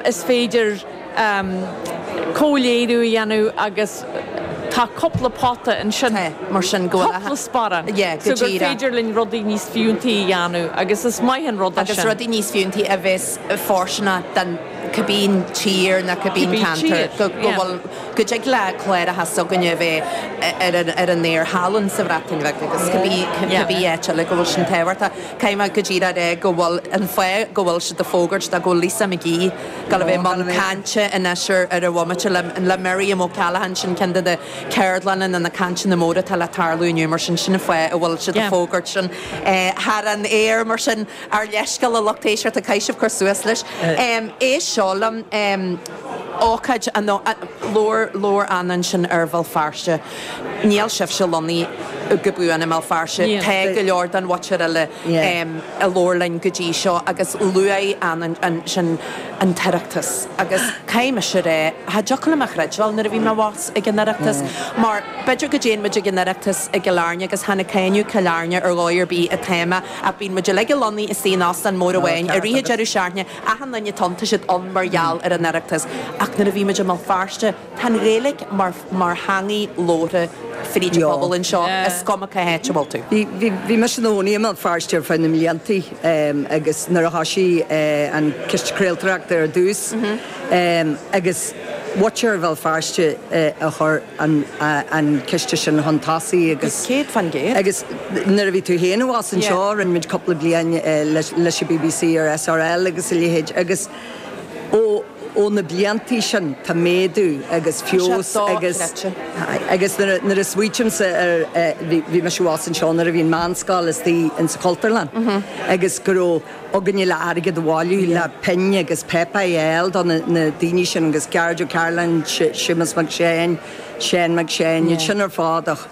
Is féidir comhléiriú a dhéanamh agus tá cupla pota ansin, mar sin, go bhfuil cupla sparán, so gur féidir linn rudaí níos fiúntaí a dhéanamh agus is maith an rud é sin. Agus rudaí níos fiúntaí a bheas fóirsteanach do cibé tír nó cibé ceantar go bhfuil, go dtig le cláracha s'againne a bheith ar an aer thall sa Bhreatain Bheag agus cibé áit eile go bhfuil sin tábhachtach. Caithfidh mé, goidé go bhfuil an fáth go bhfuil siad ag fógairt tá go bhfuil Lisa McGee ag gabháil a bheith i mbun cainte anois ar ar an bhomaite le le Miriam O Callaghan. Sin ceann de na céardlanna nó na cainteanna móra atá le tarlú inniu mar sin sin an fáth a bhfuil siad ag fógairt sin thar an aer mar sin. Ár leithscéal a lucht éisteachta, caithfidh sibh cur suas leis seo linn. Ócáid an labhair labhair Anna ansin ar Bhéal Feirste. Níl sibhse lonnaithe go buan i mBéal Feirste. Tá go leor den mhuintir eile a labhair linn go dtí seo agus luaigh ansin an tOireachtas agus caithfidh mise rá cha dtiocfadh liom a chreidbheáil nuair a bhí mé abhus ag an Oireachtas mar b'fhéidir go dtéann muid ag an Oireachtas i gCill Airne agus chan ag cáineadh Cill Airne ar dhóigh ar bith atá mé ach bíonn muid uilig lonnaithe istigh in Óstán mór amháin i rith an deireadh seachtaine achan nduine, tá siad ann mar gheall ar an Oireachtas ach nuair a bhí muid i mBéal Feirste Tá an Ghaeilic mar theangaidh labhartha fríd an phobal anseo, is cuma cá háit a bhfuil tú. Bhí mise i mo chónaí i mBéal Feirste ar feadh na mblianta agus nuair a thoisigh an Ciste Craoltóireachta ar dtús agus muintir Bhéal Feirste a chuir an ciste sin chun tosaigh agus Céad fa'n gcéad. agus nuair a bhí tú féin abhus anseo rinne muid cúpla bliain leis an bbc ar SRL agus a leithéid agus. Ó na bliantaí sin tá méadú agus feabhas agus, aye, agus nuair a smaoitímse ar, bhí mise abhus anseo nuair a bhí an meánscoil istigh ins an Chultúrlann agus go raibh againne le airgead a bhailiú le pinn agus páipéar a fháil do na daoine sin agus Gearóid Ó Cairealláin, Séamus Mac Seáin, Seán Mac Seáin, iad sin ar fad ach.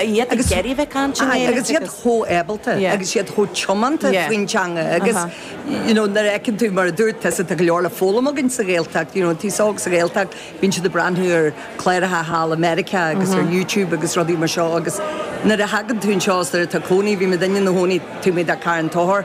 iad ag iarraidh a bheith ag caint i nGaeilge agus. agus iad chomh ábalta Yeah. agus iad chomh tiomanta Yeah. faoin teanga agus Uh-huh. you know nuair a fheiceann tú mar a dúirt tusa tá go leor le foghlaim againn sa Ghaeltacht you know an t-aos óg sa Ghaeltacht bíonn siad ag breathnú ar cláracha thall i Meiriceá agus ar YouTube agus rudaí mar seo agus nuair a thagann tú anseo is nuair atá tú i do chónaí bhí muidne inár gcónaí taobh amuigh de Carn Tóchair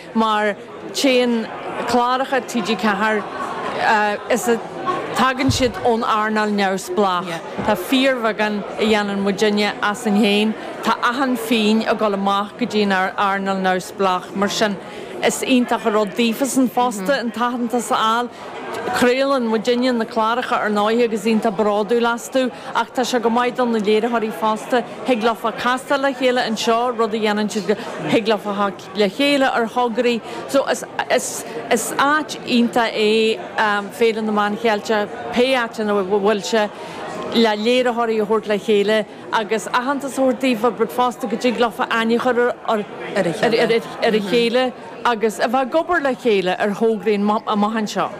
mar téann cláracha TG4 is a tagann siad ón earnáil neamhspleách. Tá fíorbheagán a dhéanann muidinne asainn féin, tá achan phingin ag dul amach go dtí an earnáil neamhspleách mar sin is iontach an rud daofasan fosta an t-aitheantas a fháil. Craolann muidinne na cláracha ar ndóigh agus iontach bródúil astu ach tá sé go maith do na léiritheoirí fosta, thig leofa castáil le chéile anseo, rud a dhéanann siad go, thig leofa. le chéile ar thograí so is áit iontach é Féile na Meán Ceilteach pé áit ina bhfuil sé le léiritheoirí a thabhairt le chéile agus aitheantas a thabhairt daofa but fosta go dtig leofa aithne a chur ar a chéile agus a bheith ag obair le chéile ar thograí amach anseo.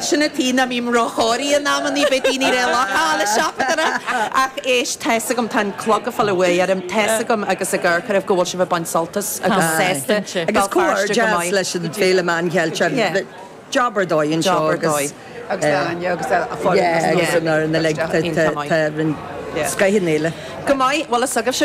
Sin a taobh ná mbím ró-chóirí in amannaí, beidh daoine ré locha le seachaint orra. Ach éist, tá's agam, tá an clog a' fáil an bhuaidh orm, tá's agam agus ag amharc oraibh go bhfuil sibh a' baint sult as Béal Feirste go maith. Agus comhghairdeas leis an Fhéile Meán Ceilteach, job ar dóigh anseo agus Agus d'Áine agus a foireann agus an fhoireann uilig, tá roinnt, scaitheann Fhéile. Go maith, bhuel is agaibhse.